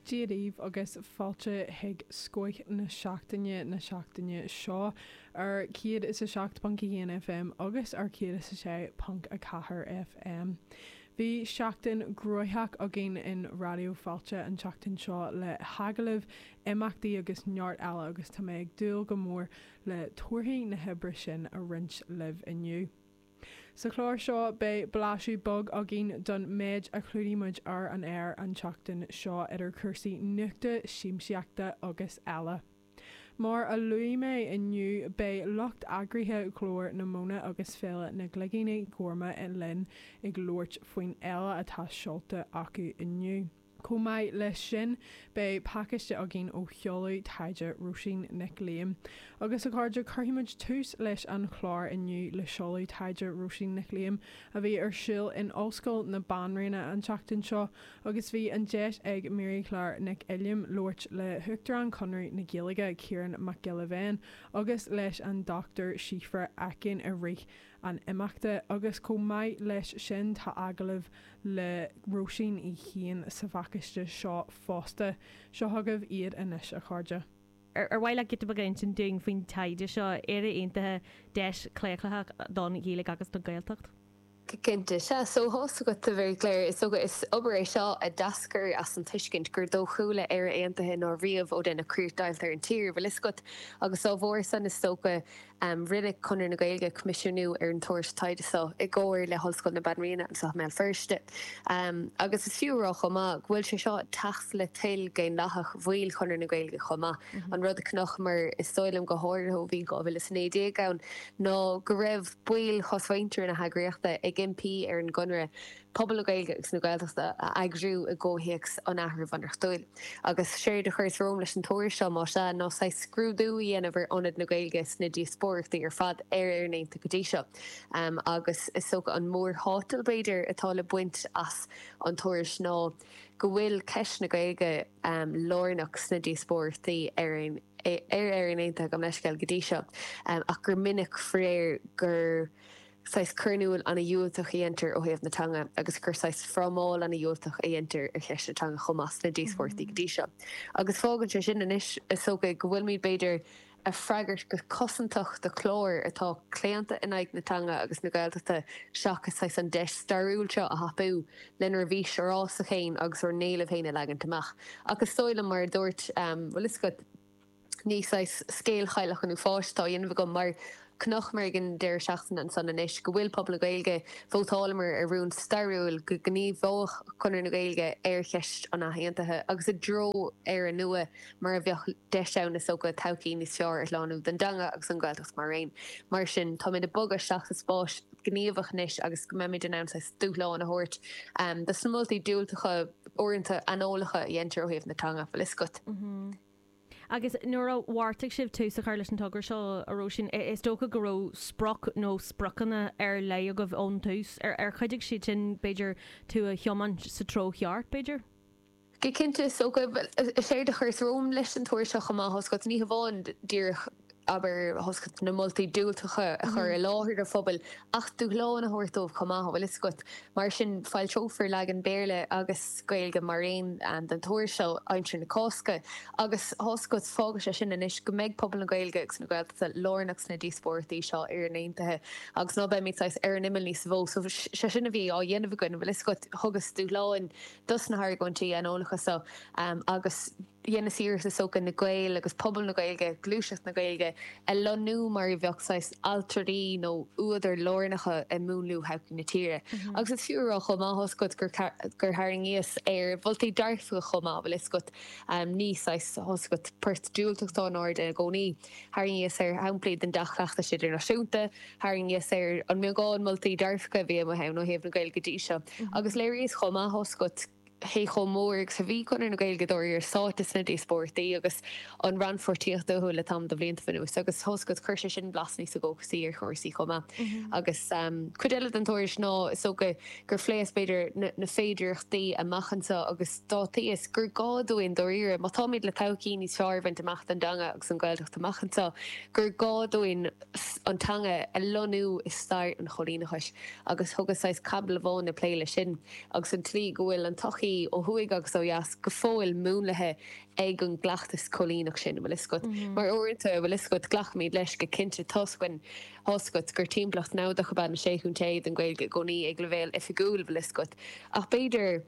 Dia daoibh agus fáilte chuig Scoith na Seachtaine na seachtaine seo ar 107.1 FM agus ar 106.4 FM. Bhí seachtain gnoitheach againn in Raidió Fáilte an tseachtain seo le hagallaimh, imeachtaí agus neart eile agus tá mé ag dúil go mór le torthaí na hoibre sin a roinnt libh inniu. Sa chlár seo beidh blaiseadh beag againn don méid a chlúdaigh muid ar an aer an tseachtain seo idir cúrsaí nuachta, siamsaíochta agus eile. Mar a luaigh mé inniu beidh lucht eagraithe Ghlór na Móna agus Féile na gCloigíní Gorma linn ag labhairt faoin fhéile atá seolta acu inniu. Chomh maith leis sin, beidh pacáiste againn ó sheoladh taighde Róisín Nic Liam. Agus, a chairde, cuirfidh muid tús leis an chlár inniu le seoladh taighde Róisín Nic Liam, a bhí ar siúl in Ollscoil na Banríona an tseachtain seo, agus bhí an deis ag Marie-Claire Nic Uilliam labhairt le hUachtarán Chonradh na Gaeilge, Ciarán Mac Giolla Bhéin, agus leis an Dr Síobhra Aiken i rith an imeachta agus chomh maith leis sin tá agallamh le Róisín í féin sa phacáiste seo fosta. Seo chugaibh iad anois, a chairde. Ar mhaith leat giota beag a insint dúinn faoin taighde seo, Éire Aontaithe, Deis Chlaochlaitheach don Ghaeilge agus don Ghaeltacht? Cinnte. Sea, so tá a fhios agat, a Mharie-Claire. Is dócha, is obair é seo a d'eascair as an tuiscint gur dóchúla Éire Aontaithe ná riamh ó deineadh críochdheighilt ar an tír, an bhfuil a fhios agat, agus dá bharr san, is dócha, Rinne Conradh na Gaeilge coimisiúnú ar an tuairisc taighde seo i gcomhar le hOllscoil na Banríona anso i mBéal Feirste agus is fiú a rá chomh maith go bhfuil sé seo ag teacht le toil dhaonlathach bhaill Chonradh na Gaeilge chomh maith. An rud a chonacamar, is dóigh liom go háirithe ó bhí 2019 ann, ná go raibh baill chosmhuintir na heagraíochta ag impí ar an gConradh pobal na Gaeilge agus na Gaeltachta a eagrú i gcomhthéacs an athrú bhunreachtúil. Agus séard a chuireas romham leis an tuairisc seo, má sea, ná saghas scrúdú a dhéanamh ar ionad na Gaeilge sna díospóireachtaí ar fad ar Éirinn Aontaithe go dtí seo. Agus is dócha an mórthátal, b'fhéidir, atá le baint as an tuairisc ná go bhfuil ceist na Gaeilge lárnach sna díospóireachtaí ar ar Éirinn Aontaithe, gabh mo leithscéal, go dtí seo, ach gur minic faraor gur. saghas cur in iúl ana dhiúltach a dhéantar ó thaobh na teanga agus gur saghas frámáil ana dhiúltach a dhéantar ar cheist na teanga chomh maith sna díospóireachtaí go dtí seo. Agus fágann sé sin anois, is dócha, go bhfuilimid, b'fhéidir, ag freagairt go cosantach do chlár atá claonta in aghaidh na teanga agus na Gaeltachta seachas saghas an deis stairiúil seo a thapú lenár bhfís fhorásach féin agus ár n-éilimh féin a leagaint amach. Ach is dóigh liom, mar a dúirt, an bhfuil a fhios agat. ní saghas scéal chailleach an uafáis atá á dhéanamh agam, mar chonaiceamar ag an deireadh seachtaine ansan anois, go bhfuil pobal na Gaeilge, vótálamar ar rún stairiúil go ngníomhódh Conradh na Gaeilge ar cheist an athaontaithe, agus i dtreo Éire nua mar a bheadh deis ann is dócha, todhchaí níos fearr a shlánú don dteanga agus don Ghaeltacht mar aon. Mar sin, táimid ag bogadh isteach sa spáis ghníomhach anois agus go mbeimid in ann saghas dúshlán a thabhairt dos na moltaí diúltacha, uaireanta aineolacha, a dheintear ó thaobh na teanga, bhfuil fhios agat. Agus nuair a bheartaigh sibh tús a chur leis an togra seo, a Róisín, is dócha go raibh sprioc nó spriocanna ar leith agaibh ón tús. Ar chuidigh siad sin, b'fhéidir, tú a thiomáint sa treo cheart, b'fhéidir? Go cinnte. Is dócha, bhuel, séard a chuireas romham leis an tuairisc seo chomh maith, tá fhios agat, ní hamháin díreach, abair, tá fhios agat, na moltaí diúltacha a chur i láthair do phobail, ach dúshlán a thabhairt dóibh chomh maith, an bhfuil fhios agat. Mar sin, foilseofar leagan Béarla agus Gaeilge mar aon den tuairisc seo aimsir na Cásca. Agus tá fhios agat, fágann sé sin anois go mbeidh pobal na Gaeilge agus na Gaeltachta lárnach sna díospóireachtaí seo ar Éirinn aontaithe agus ná beimid saghas ar an imeall níosa mhó. So, sé sin a bhí á dhéanamh againn, an bhfuil fhios agat. Thugas dúshláin dos na hargóintí aineolacha so agus. dheineas iarracht is dócha na Gaeil agus pobal na Gaeilge, gluaiseacht na Gaeilge a lonnú mar a bheadh saghas ailtirí nó údair lárnacha ag múnlú thodhchaí na tíre. Agus is fiú a rá chomh maith tá fhios agat gur tharraingíos ar mholtaí dearfacha chomh maith a bhfuil fhios agat ní saghas tá fhios agat port diúltach atá in airde ina gcónaí. Tharraingíos ar shamplaí den dea-chleachtas idirnáisiúnta, tharraingíos ar an mbeagán moltaí dearfacha a bhí amuigh ann ó thaobh na Gaeilge de seo agus léiríos chomh maith tá fhios agat, cé chomh mór agus a bhí Conradh na Gaeilge dáiríre sáite sna díospóireachtaí agus an rannpháirtíocht uathu le tamall de bhlianta anuas, agus tá fhios agat, chuir sé sin blas níos dóchasaí ar chúrsaí chomh maith. Agus cuid eile den tuairisc ná, is dócha, gur phléas, b'fhéidir, na féidireachtaí amach anseo, agus d'áitíos gur gá dúinn, dáiríre, má táimid le todhchaí níos fearr a bhaint amach don dteanga agus don Ghaeltacht amach anseo, gur gá dúinn an teanga a lonnú i stair an choilíneachais, agus thugas saghas caibidil amháin ag plé leis sin. agus an tslí go bhfuil an tsochaí, ó thuaidh agus ó dheas, go fóill múnlaithe ag an gcleachtas coilíneach sin, an bhfuil 'fhios agat. Mar uaireanta, bhfuil 'fhios agat, glacaimid leis go cinnte toisc, tá 'fhios agat, gur timpeallacht namhadach ab ea na Sé Chontae don Ghaeilge i gcónaí ag leibhéal oifigiúil, bhfuil 'fhios agat, ach b'fhéidir,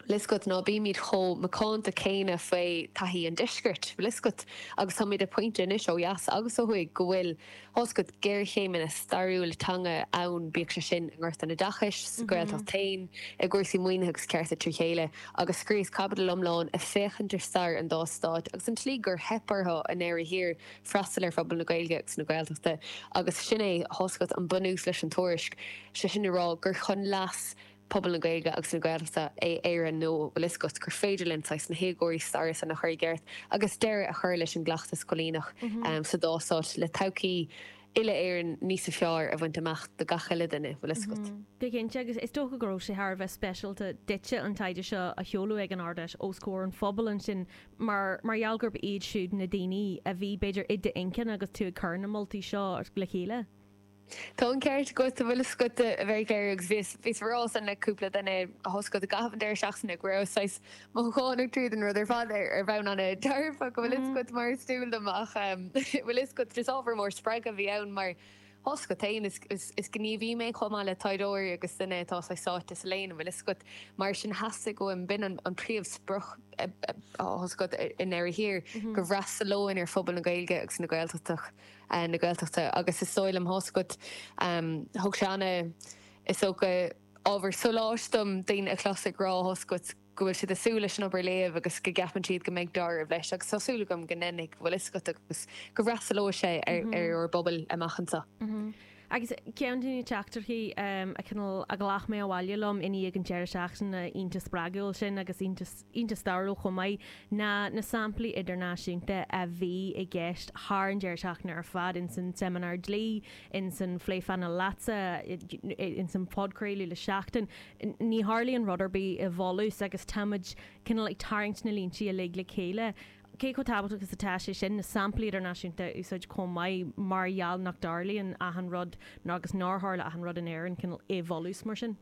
bhfuil 'fhios agat, ná bímid chomh macánta céanna faoi thaithí an deiscirt, bhfuil 'fhios agat, agus táimid ag pointe anois, ó dheas agus ó thuaidh, go bhfuil. Tá fhios agat, géarchéimeanna stairiúla teanga ann, bíodh sé sin i ngort an oideachais, sa Ghaeltacht féin, i gcúrsaí maoinithe agus cearta trí chéile, agus scríos caibidil iomlán ag féachaint ar stair an dá stáit agus an tslí gur theip orthu i ndeireadh thiar freastal ar phobal na Gaeilge agus na Gaeltachta, agus sin é, tá fhios agat, an bunús leis an tuairisc, sé sin le rá gur chun leas. pobal na Gaeilge agus na Gaeltachta in Éirinn nó bhfuil fhios agat gur féidir linn saghas na héagóracha staire san a chur i gceart agus deireadh a chur leis an gcleachtas coilíneach sa dá stát le todhchaí uile-Éireann níos fearr a bhaint amach do gach uile duine, bhfuil fhios agat. Go cinnte, agus is dócha go raibh sé thar a bheith speisialta duitse an taighde seo a sheoladh ag an Ard-Fheis os comhair an phobail ansin mar gheall gurb iad siúd na daoine a bhí, b'fhéidir, i d'intinn agus tú ag cur na moltaí seo le chéile. Tá an ceart agat, bhfuil fhios agat a bhuí le agus bhíos, bhíos á rá san le cúpla duine tá fhios agat i gcaitheamh an deireadh seachtaine go raibh saghas mothúchánach tríd an rud ar fad ar, ar bhonn an-dearfach, bhfuil fhios agat, mar is dual dom ach em, bhfuil fhios agat, is ábhar mór spreagtha a bhí ann mar tá fhios agat féin, is, is, is gníomhaí mé chomh maith le taighdeoirí agus duine atá saghas sáite sa léann, bhfuil fhios agat, mar sin theastaigh uaim, b'in an, an príomhsprioc a, a, a tá fhios agat i ndeireadh thiar, go bhfreastalóinn ar phobal na Gaeilge agus na Gaeltachta. na Gaeltachta agus is dóigh liom, tá fhios agat, thug sé ana, is dócha, ábhar sóláis dom daoine a chlos ag rá, tá fhios agat, go bhfuil siad ag súil leis an obair a léamh agus go gceapann siad go mbeidh deáramh leis agus tá súil agam go ndéanfaidh, bhfuil fhios agat, agus go bhfreastalóidh sé ar ár bpobal amach anseo. Agus ceann de na teachtaireachtaí cineál a ghlac mé abhaile liom i ndiaidh an deireadh seachtaine iontach spreagúil sin, agus iontach iontach stairiúil chomh maith, ná na samplaí idirnáisiúnta a bhí i gceist thar an deireadh seachtaine ar fad, ins an tseimineár dlí, ins an phlé painéil leatsa, ins an phodchraoladh le Seachtain. Ní tharlaíonn rud ar bith i bhfolús agus táimid cineál ag tarraingt na líntí uilig le chéile. Cé chomh tábhachtach is atá sé sin na samplaí idirnáisiúnta a úsáid chomh maith mar gheall nach dtarlaíonn achan rud, nó agus nár tharla achan rud in Éirinn, cineál i bhfolús mar sin?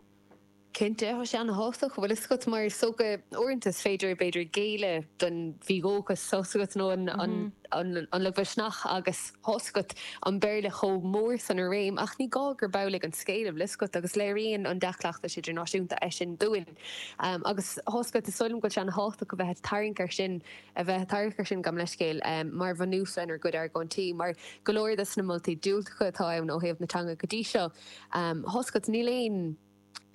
Cinnte, tá sé ana-thábhachtach, bhfuil fhios agat, mar is dócha, uaireanta is féidir, b'fhéidir, géilleadh don mhídhóchas, tá fhios agat, nó an lagmhisneach agus tá fhios agat, an Béarla chomh mór san i réim, ach ní gá gurb amhlaidh an scéal, bhfuil fhios agat, agus léiríonn an dea-chleachtas idirnáisiúnta é sin dúinn. Agus tá fhios agat is dóigh liom go bhfuil sé ana-thábhachtach a bheith ag tarraingt air sin, a bheith ag tarraingt air sin gan leithscéal, mar bhunús lenár gcuid argóintí, mar go leor de sna moltaí diúltacha atá ann ó thaobh na teanga go dtí seo, tá fhios agat, níl aon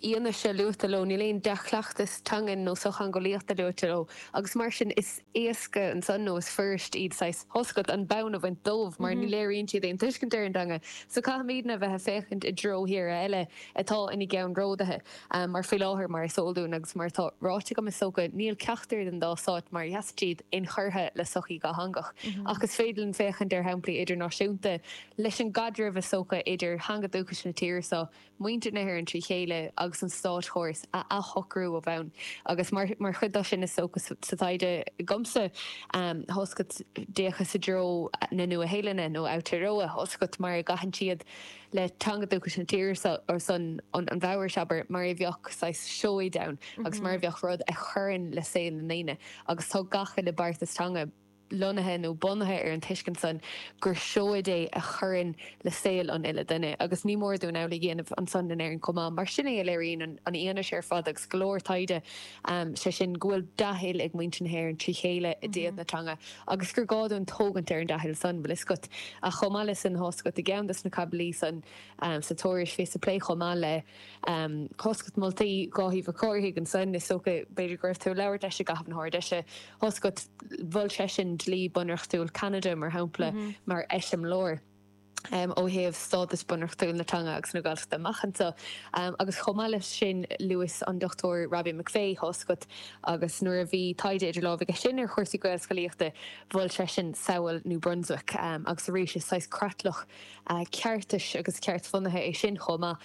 fhianaise luaite leo, níl aon dea-chleachtas teangan nó sochtheangeolaíochta luaite leo, agus mar sin, is éasca ansan, nó is fuirist iad, saghas, tá fhios agat, an bonn a bhaint dóibh, mar ní léiríonn siad aon tuiscint ar an dteanga. So caithfimidne a bheith ag féachaint i dtreo tíortha eile atá ina gceann ródaithe. Ach mar faoi láthair, mar is eol dúinn agus mar atá ráite agam, is dócha, níl ceachtar den dá stát mar a sheasann siad inchurtha le sochaí dhatheangach. Ach is féidir linn féachaint ar shamplaí idirnáisiúnta leis an gcaidreamh, is dócha, idir theanga dúchais na tíre seo, muintir na hÉireann trí chéile, agus an státchóras a athshocrú ó bhonn. Agus mar chuid de sin, is dócha, sa taighde agamsa, tá fhios agat, d'fhéachas i dtreo na Nua-Shéalainne, nó Aotearoa, tá fhios agat, mar a gcaitheann siad, le teanga dúchais na tíre san, an Mhaorais, abair, mar a bheadh saghas seoid ann agus mar a bheadh rud a chuireann le saol na ndaoine. Agus tá gach uile beartas teanga lonnaithe nó bunaithe ar an tuiscint san gur seoid é a chuireann le saol an uile dhuine. Agus ní mór dúinn amhlaidh a dhéanamh ansan in Éirinn chomh maith, mar sin é a léiríonn an fhianaise ar fad agus go leor taighde, sé sin, go bhfuil dea-thoil ag muintir na hÉireann trí chéile i dtaobh na teanga. agus gur gá dúinn tógaint ar an dea-thoil san, bhfuil fhios agat, ach chomh maith le san, tá fhios agat, i gceann dos na caibidlí san, sa tuairisc, bhíos ag plé chomh maith le, tá fhios agat, moltaí Dháithí Mhic Cárthaigh ansan, is dócha, b'fhéidir go raibh tú ag labhairt leis i gcaitheamh na hArd-Fheise, tá fhios agat, mhol seisean dlí bunreachtúil Cheanada, mar shampla, mar eiseamláir. ó thaobh stádas bunreachtúil na teanga agus na Gaeltachta amach anseo. Agus chomh maith leis sin, luas an Dr Robbie McVeigh, tá fhios agat, agus nuair a bhí taighde idir lámha aige sin ar chúrsaí Gaelscolaíochta, mhol seisean samhail New Brunswick. Agus arís, is saghas creatlach ceartais agus ceartbhunaithe é sin chomh maith,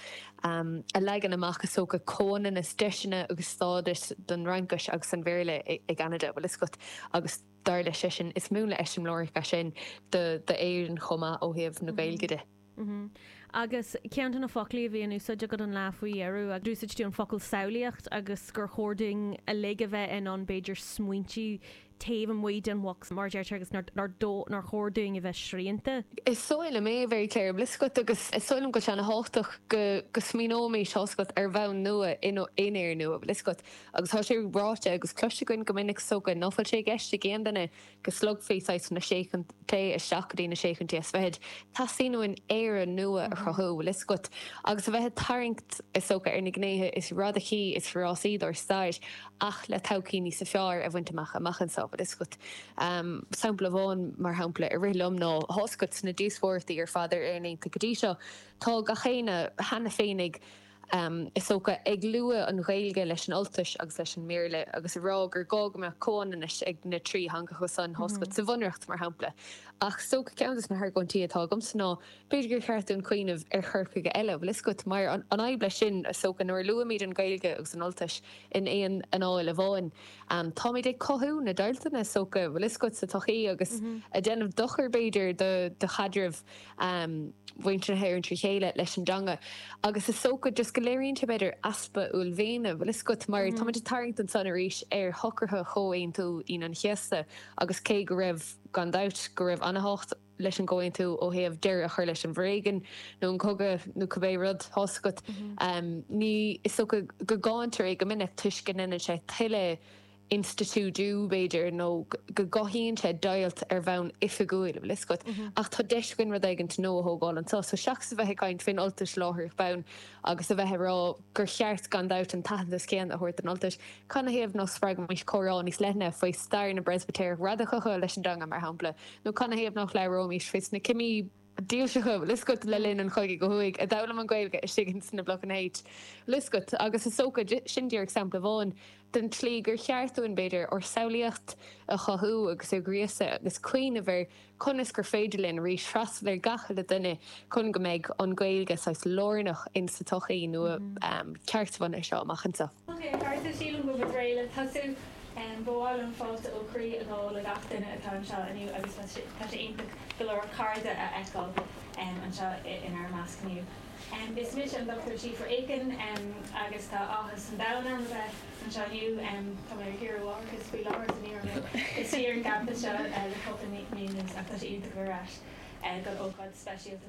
a leagann amach, is dócha, comhionannas deiseanna agus stádais don Fhraincis agus an Bhéarla i gCeanada, bhfuil fhios agat, agus. dar leis-sean, is múnla eiseamláireach é sin d'Éirinn chomh maith ó thaobh na Gaeilge de. Agus ceann de na foclaí a bhí in úsáid agat an lá faoi dheireadh, agus d'úsáid tú an focal samhlaíocht agus gur chóir dúinn uilig a bheith in ann, b'fhéidir, smaointiú taobh amuigh den bhox, mar a deirtear, agus nár chóir dúinn a bheith srianta. Is dóigh liom é, a Mhary Claire, bhfuil fhios agat, agus is dóigh liom go an-thábhachtach go smaoineoimis, tá fhios agat, ar bhonn nua in aon Éirinn nua, bhfuil fhios agat. Agus tá sé ráite agus cloiste againn go minic, is dócha, ná fuil sé i gceist ag aon duine go slogfaí saghas na Sé Chontae isteach go dtí na Sé Chontae is Fichid. Teastaíonn uainn Éire nua a chruthú, bhfuil 'fhios agat, agus a bheith ag tarraingt, is dócha, ar na gnéithe is radacaí, is forásaí dár stair ach le todhchaí níosa fearr a bhaint amach amach anseo, bhfuil 'fhios agat. Sampla amháin, mar shampla, a rith liom ná, tá 'fhios agat, sna díospóireachtaí ar fad ar Éirinn Aontaithe go dtí seo, tá gach éinne cheana féin ag. Is dócha, ag lua an Ghaeilge leis an Ultais agus leis an mBéarla agus ag rá gur gá go mbeadh comhionannais ag na trí theangacha san, tá fhios agat, sa Bhunreacht, mar shampla. Ach is dócha ceann de na hargóintí atá agamsa ná, b'fhéidir gur cheart dúinn cuimhneamh ar chur chuige eile, bhfuil fhios agat, mar an fhadhb leis sin, is dócha, nuair a luaimid an Ghaeilge agus an Ultais in aon anáil amháin, táimid ag cothú na deighilteanna, is dócha, bhfuil fhios agat, sa tsochaí agus ag déanamh dochair, b'fhéidir, do chaidreamh. mhuintir na hÉireann trí chéile leis an dteanga agus is dócha just go léiríonn sé b'fhéidir easpa uaillmhéine, bhfuil fhios agat, mar táimid ag tarraingt ansan arís ar shocruithe Chomhaontú Aoine an Chéasta agus cé go raibh gan dabht go raibh an-tábhacht leis an gComhaontú ó thaobh deireadh a chur leis an bhforéigean nó an cogadh nó cibé rud, tá fhios agat, ní is dócha go gcáintear é go minic toisc go ndéanann sé tuilleadh institiúidiú, b'fhéidir, nó go gcothaíonn sé deighilt ar bhonn oifigiúil, an bhfuil a fhios agat? Ach tá deis againn rud éigin nua a thógáil anseo. So seachas a bheith ag caint fén Ultais láithreach bonn agus a bheith ag rá gur cheart, gan dabht, an t-aitheantas céanna a thabhairt don Ultais, canathaobh ná spreagaimís comhrá níos leithne faoi stair na bPreispitéireach radacacha leis an dteanga, mar shampla? Nó canathaobh nach labhróimís faoi sna cimí? dílseacha, an bhfuil a fhios agat, le linn an chogaidh ó thuaidh a d'fhoghlaim an Ghaeilge istigh ins na Blocanna H. An bhfuil a fhios agat, agus is dócha, sin díreach sampla amháin den tslí gur cheart dúinn, b'fhéidir, ár samhlaíocht a chothú agus a ghríosadh agus cuimhneamh ar conas gur féidir linn arís freastal ar gach uile dhuine chun go mbeidh an Ghaeilge saghas lárnach ins sa tsochaí nua ceartbhunaithe seo amach anseo. Ceart. Sílim go bhfuil muid réidh le tosú. Ba mhaith liom fáilte ó chroí a ghabháil le gach duine atá anseo inniu agus tá sé tá sé iontach go leor cairde a fheiceáil anseo inár measc inniu. Is mise an Dr. Síobhra Aiken agus tá áthas an domhain orm a bheith anseo inniu. Tá mé ar saoire mháithreachais faoi láthair so ní raibh mé istigh ar an gcampas seo le cúpla mí anuas ach tá sé iontach a bheith ar ais don ócáid speisialta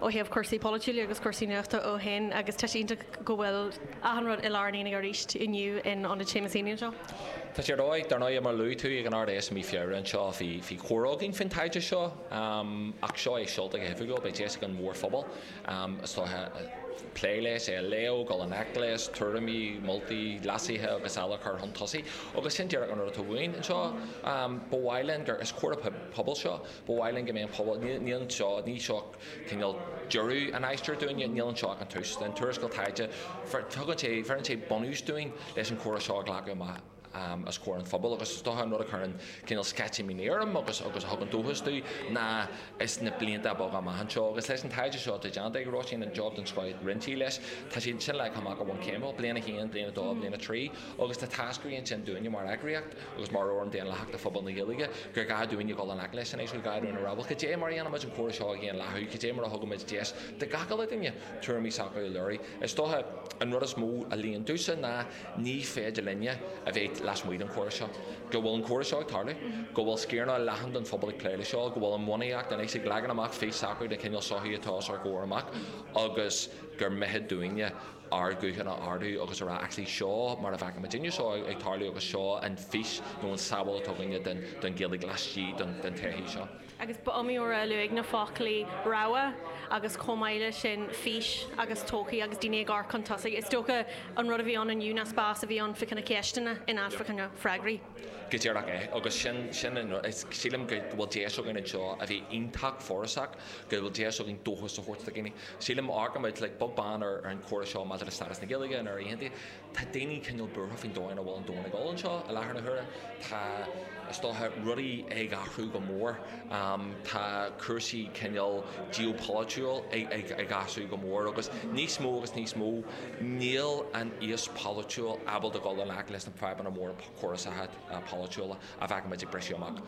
ó thaobh cúrsaí polaitiúla agus cúrsaí nuachta ó shin agus tá sé iontach go bhfuil achan rud i lár an aonaigh arís inniu in Ionad Seamus Heaney anseo. Tá sé ar dóigh. Dar ndóigh, mar a luaigh tú, ag an Ard-Fheis i mí Feabhra anseo bhí comhrá againn faoin taighde seo ach seo é seolta go hoifigiúil. Beidh deis ag an mhórphobal, is dócha, plé leis, é a léamh, dul in ngleic leis, tuairimí, moltaí, leasuithe agus eile a chur chun tosaigh agus sin díreach an rud atá uainn anseo. Ba mhaith linn gur, is comhrá pobail seo, Ba mhaith linn go mbeidh an pobal, níl anseo, ní seo cineál deireadh an aistir dúinne, níl anseo ach an tús. Tá an tuarascáil taighde, tugann sé, bheireann sé bunús dúinn leis an chomhrá seo a ghlacadh amach os comhair an phobail agus is dócha an rud a chuireann cineál sceitimíní orm agus a thugann dóchas dom ná ins na blianta beaga amach anseo agus leis an taighde seo atá déanta ag Róisín, an job den scoith a rinne sí leis, tá sé sin leagtha amach i bhfoirm céimiúil, bliain a haon, bliain a dó, bliain a trí agus tá táscairí ansin dúinne mar eagraíocht. agus mar fhóram daonlathach do phobal na Gaeilge, gur gá dúinne a dhul i ngleic leo agus a rá, bhuel. Cad é mar a dhéanaimid an comhrá seo a dhaonlathú? Cad é mar a thugaimid deis do gach uile dhuine tuairimí s'acu a léiriú? Is dócha an rud is mó a luíonn domhsa ná ní féidir linne a bheith lasmuigh den chomhrá seo. Go bhfuil an comhrá seo ag tarlú, go bhfuil sciaranna leathan den phobal ag plé leis seo, go bhfuil an bhunaíocht anois ag leagan amach fís s'acu den chineál sochaí atá os ár gcomhair amach agus gur mithid dúinne, ár nguthanna a ardú agus a rá, actually, seo mar a bhfeiceann muidinne seo ag tarlú agus seo an fís nó an tsamhail atá againne den Ghaeilge laistigh den tsochaí seo. Agus ba iomaí uair a luadh na foclaí 'rogha' agus chomh maith leis sin 'fís' agus 'todhchaí' agus daoine ag amharc chun tosaigh. Is dócha an rud a bhí ann inniu ná spás a bhí ann fá choinne ceisteanna in áit fá choinne freagraí. Go díreach é. Agus sin an rud, sílim go bhfuil deis againn anseo a bheith iontach forásach go bhfuil deis againn dóchas a thabhairt do dhaoine. Sílim, ó amharcann muid beag beann ar an chóras seo maidir le stádas na Gaeilge in áirithe, tá daoine cineál buartha faoin dóigh ina bhfuil an domhan ag dul ann i láthair na huaire. Tá, is dócha, rudaí ag athrú go mór. Tá cúrsaí cineál geopolaitiúil ag athrú go mór agus níos mó agus níos mó níl an aos polaitiúil ábalta dul i ngleic leis na fadhbanna móra geopolaitiúla a bhfeicimid ag briseadh amach.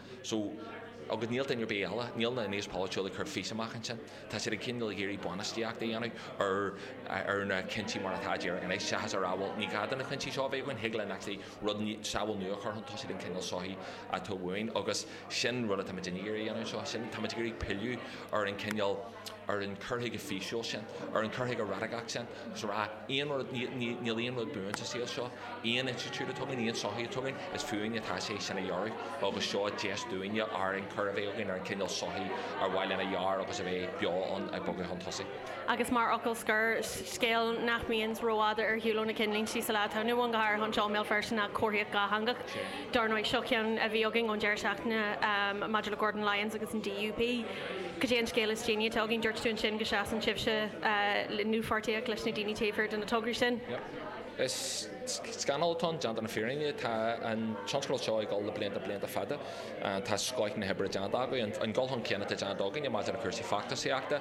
Agus níl, in áit ar bith eile, níl an t-aos polaitiúil ag cur fís amach ansin. Tá siad ag cineál ag iarraidh bainistíocht a dhéanamh ar ar na cuinsí mar atá i dtreo anois, seachas a rá, bhuel, ní gá do na cuinsí seo a bheith againn, thig linn actually rud, samhail nua a chur chun tosaigh den chineál sochaí atá uainn. Agus sin rud atáimid ag iarraidh a dhéanamh anseo, sin, táimid ag iarraidh pilleadh ar an chineál, an cur chuige físiúil sin, ar an chur chuige radacach sin, agus a rá, aon rud, níl aon rud buan sa saol seo, aon institiúid a tugann aon sochaí a tugann, is fúinn atá sé é sin a dhearadh, agus seo deis dúinne ár ionchur a bheith againn ar an chineál sochaí ar mhaith linn a dhearadh agus a bheith beo ann ag bogadh chun tosaigh. Agus mar fhocal scoir, scéal nach mbíonn rófhada ar shiúl ó na cinnlíntí sa lá atá inniu ann, go háirithe anseo i mBéal Feirste, ná comharthaíocht dhátheangach. Dar ndóigh, seo ceann a bhí againn ón deireadh seachtaine maidir le Gordon Lyons agus an DUP. Cad é an scéal is déanaí atá againn? Dúirt tú ansin go seasann sibhse i ndlúthpháirtíocht leis na daoine taobh thiar de na tograí sin. Is scannal atá ann, déanta na fírinne. Tá an tionscadal seo ag dul le blianta, blianta fada. Tá scoith na hoibre déanta againn. An dul chun cinn atá déanta againne maidir le cúrsaí feachtasaíochta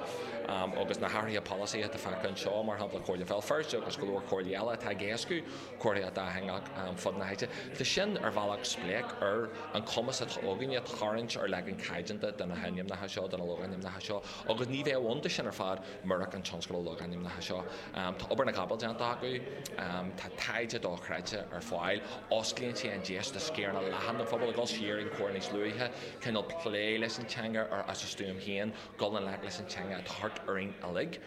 agus na hathruithe polasaí atá feicthe anseo, mar shampla Comhairle Bhéal Feirste agus go leor comhairlí eile atá ag éascú, comharthaíocht dhátheangach fud na háite. Tá sin ar bhealach spléach ar an chumas atá againne tarraingt ar leagan caighdeánta de na hainmneacha seo, de na logainmneacha seo, agus ní bheadh ann do sin ar fad murach an tionscadal logainmneacha seo. Tá obair na gcapall déanta acu, tá taighde dochreidte ar fáil, osclaíonn sé an deis do sciaranna leathan den phobal a dhul siar ar an chomhrá níos luaithe, cineál plé leis an teanga as a stuaim féin, dul i ngleic leis an teanga atá thart orainn uilig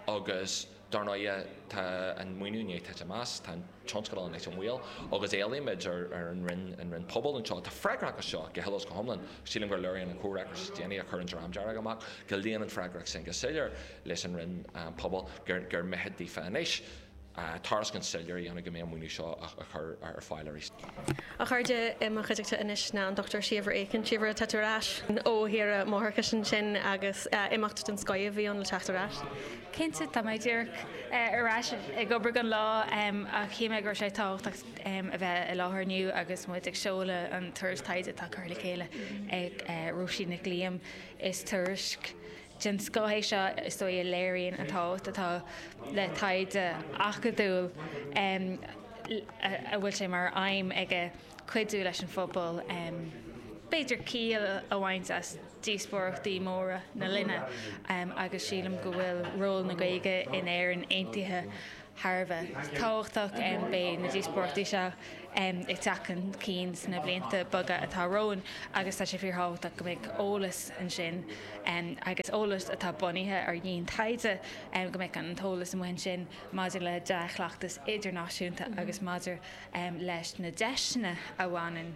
agus. Dar ndóighe, tá an maoiniú i ndiaidh titim amach, tá an tionscadal anois i mbaol, agus éilímid ar an Roinn, an Roinn Pobal anseo, atá freagrach as seo go huile is go hiomlán, sílim gur léiríonn an comhfhreagras is déanaí a chuir an Dream Dearg amach go luíonn an freagracht sin go soiléir leis an Roinn Pobal, gur mithid daofa anois tairiscint soiléir a dhéanamh go mbeidh an maoiniú seo á chur ar fáil arís. A chairde i mo chuideachta anois ná an Dochtúir Síobhra Aiken, Síobhra, tá tú ar ais ó shaoire máithreachais ansin agus imeacht den scoith a bhí ann le teacht ar ais. Cinnte, tá mé díreach ar ais ag obair anois ach shíl mé go raibh sé tábhachtach a bheith i láthair inniu agus muid ag seoladh an tuairisc taighde atá curtha le chéile ag Róisín Nic Liam. Is tuairisc. den scoth é seo is dóigh a léiríonn an tábhacht atá le taighde acadúil a bhfuil sé mar aidhm aige cuidiú leis an phobal b'fhéidir ciall a bhaint as díospóireachtaí móra na linne agus sílim go bhfuil ról na Gaeilge in Éirinn aontaithe thar a bheith tábhachtach. Beidh na díospóireachtaí seo ag teacht chun cinn sna blianta beaga atá romhainn agus tá sé fíorthábhachtach go mbeadh eolas ansin agus eolas atá bunaithe ar dhiantaighde, go mbeadh an t-eolas amuigh ansin maidir le dea-chleachtas idirnáisiúnta agus maidir leis na deiseanna a bhaineann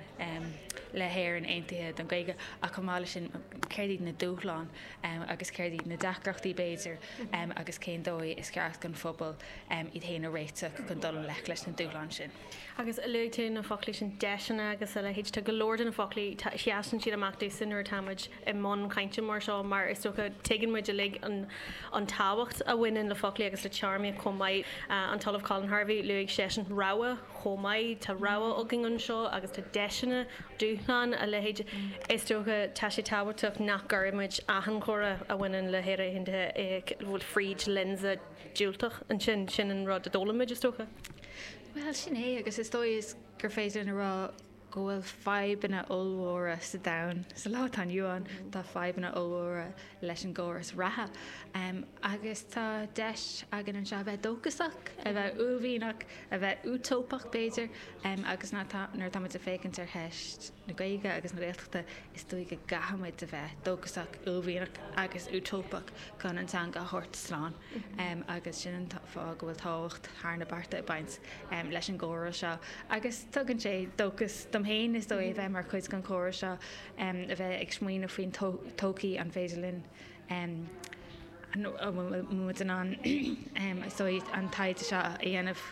le hÉirinn aontaithe don Ghaeilge ach chomh maith leis sin céard iad na dúshláin. agus céard iad na deacrachtaí, b'fhéidir, agus cén dóigh is ceart don phobal iad féin a réiteach chun dul i ngleic leis na dúshláin sin. Agus luaigh tú go na foclaí sin, deiseanna agus a leithéid. Tá go leor de na foclaí, sheasann siad amach domsa nuair atáimid i mbun cainte mar seo, mar is dócha tuigeann muid uilig an tábhacht a bhaineann le foclaí agus le téarmaíocht chomh maith. An tOllamh Colin Harvey, luaigh seisean rogha. chomh maith. Tá rogha againn anseo agus tá deiseanna, dúshlán a leithéid. Is dócha, tá sé tábhachtach nach gcuirimid achan chomhrá a bhaineann le hÉire Aontaithe abhus fríd lionsa diúltach ansin. Sin an rud a d'fhoghlaim muid, is dócha. Bhuel, sin é agus is dóigh is gur féidir linn a rá, go bhfuil fadhbanna ollmhóra sa domhan sa lá atá inniu ann, tá fadhbanna ollmhóra leis an gcóras reatha agus tá deis againn anseo a bheith dóchasach, a bheith uaillmhianach, a bheith útóipeach b'fhéidir agus nuair atá muid ag féachaint ar cheist na Gaeilge agus na Gaeltachta, is dóigh go gcaithfidh muid a bheith dóchasach, uaillmhianach agus útóipeach chun an teanga a thabhairt slán. agus sin an fáth go bhfuil tábhacht thar na bearta ag baint leis an gcomhrá seo. Agus tugann sé dóchas dom féin, is dóigh, a bheith mar chuid den chomhrá seo, a bheith ag smaoineamh faoin todhchaí, an féidir linn, an bhfuil muid in ann, is dóigh, an taighde seo a dhéanamh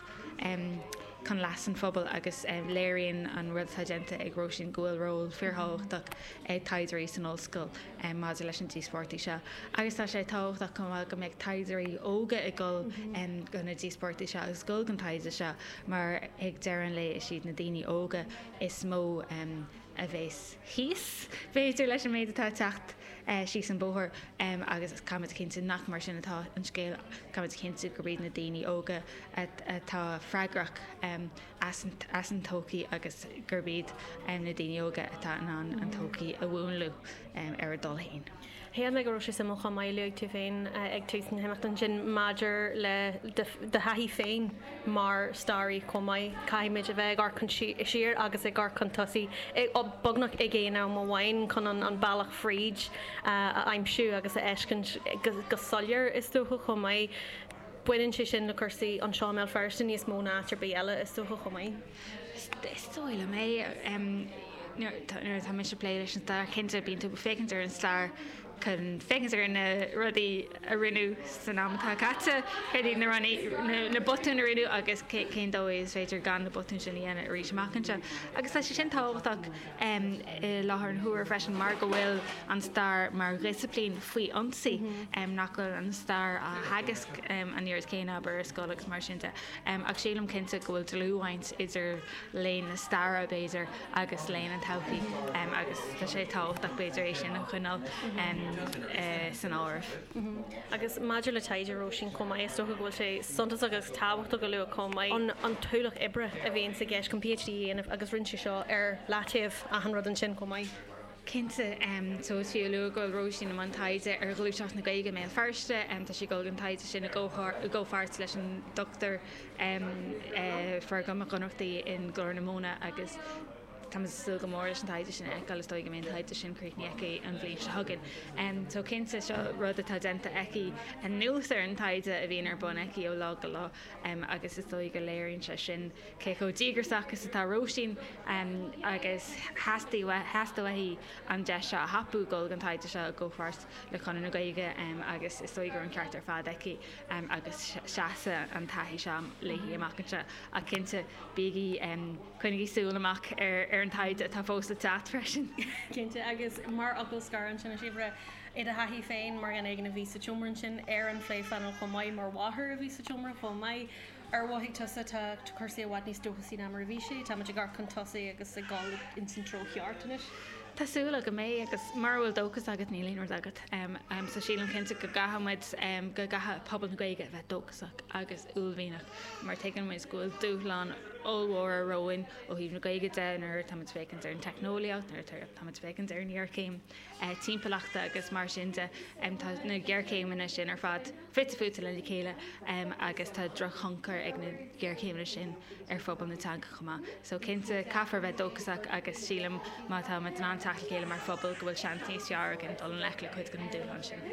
chun leas an phobail agus léiríonn an rud atá déanta ag Róisín go bhfuil ról fíorthábhachtach ag taighdeoirí san ollscoil. maidir leis na díospóireachtaí seo agus tá sé tábhachtach chomh maith go mbeadh taighdeoirí óga ag gabháil do na díospóireachtaí seo agus ag gabháil don taighde seo mar ag deireadh an lae is iad na daoine óga is mó a bheas thíos b'fhéidir leis an méid atá ag teacht síos an bóthar agus caithfimid a chinntiú nach mar sin atá an scéal, caithfimid a chinntiú gurb iad na daoine óga atá freagrach. as an todhchaí agus gurb iad na daoine óga atá in ann an todhchaí a mhúnlú ar a dtoil féin. Shíl mé go raibh sé suimiúil chomh maith luaigh tú féin ag tús na himeachta ansin maidir le do thaithí féin mar staraí chomh maith, caithfimid a bheith ag amharc chun siar agus ag amharc chun tosaigh beagnach ag aon am amháin chun an bealach fríd a aimsiú agus a fheiceáil go soiléir is dócha chomh maith. Baineann sé sin le cúrsaí anseo i mBéal Feirste níos mó ná áit ar bith eile, is dócha, chomh maith. Is dóigh liom é. Nuair atá mise ag plé leis an stair, cinnte, bíonn tú ag féachaint ar an stair chun féachaint ar na rudaí a rinneadh san am atá caite, céard iad na rudaí, na botúin a rinneadh agus cén dóigh is féidir gan na botúin sin a dhéanamh arís amach anseo. Agus tá sé sin tábhachtach. i láthair na huaire freisin mar go bhfuil an stair mar dhisciplín faoi ionsaí, nach bhfuil an stair á theagasc an oiread céanna, abair, ar scoil agus mar sin de. Ach sílim cinnte go bhfuil dlúthbhaint idir léann na staire, b'fhéidir, agus léann na todhchaí agus tá sé tábhachtach, b'fhéidir, é sin a choinneáil san áireamh. Agus maidir le taighde Róisín chomh maith, is dócha go bhfuil sé suntasach agus tábhachtach a lua chomh maith an t-ualach oibre a bhíonn sa gceist chun PhD a dhéanamh agus rinne sí seo ar leataobh achan rud ansin chomh maith. Cinnte, is fiú a lua go bhfuil Róisín i mbun taighde ar ghluaiseacht na Gaeilge i mBéal Feirste. Tá sí ag dul don taighde sin i gcomhpháirt leis an Dr Fergal Mac Ionnrachtaigh i nGlór na Móna agus. Tá mé ag súil go mór leis an taighde sin a fheiceáil, is dóigh go mbeidh an taighde sin críochnaithe aici an bhliain seo chugainn. Só cinnte, seo rud atá déanta aici anuas ar an taighde a bhíonn ar bun aici ó lá go lá agus is dóigh go léiríonn sé sin cé chomh díograsach is atá Róisín agus theastaigh uaithi an deis seo a thapú dul don taighde seo i gcomhpháirt le Conradh na Gaeilge agus is dóigh go raibh an ceart ar fad aici agus seasfaidh an taithí seo léi amach anseo. Ach cinnte, bígí. Coinnigí súil amach ar an taighde atá fós le teacht freisin. Cinnte. Agus mar fhocal scoir ansin, a Síobhra, i do thaithí féin, mar dhuine éigin a bhí sa tseomra ansin ar an phléphainéal chomh maith, mar mháthair a bhí sa tseomra chomh maith, ar mhothaigh tusa, tá cúrsaí i bhfad níos dóchasaí ná mar a bhí sé, táimid ag amharc chun tosaigh agus ag dul ins an treo cheart anois? Tá súil agam é agus mura bhfuil dóchas agat níl aon rud agat. So sílim cinnte go gcaithfimid, go gcaithfidh pobal na Gaeilge a bheith dóchasach. Agus uaillmhianach, mar tuigeann muid go bhfuil dúshláin ollmhóra romhainn ó thaobh na Gaeilge de nuair atáimid féachaint ar an teicneolaíocht, nuair atáimid féachaint ar an ghéarchéim timpeallachta agus mar sin de. Tá na géarchéimeanna sin ar fad fite fuaite lena chéile agus tá drochthionchar ag na géarchéimeanna sin ar phobal na teanga chomh maith. So cinnte, caithfear a bheith dóchasach agus sílim má táimid in ann teacht le chéile mar phobal go bhfuil seans níos fearr againn dul i ngleic le cuid de na dúshláin sin.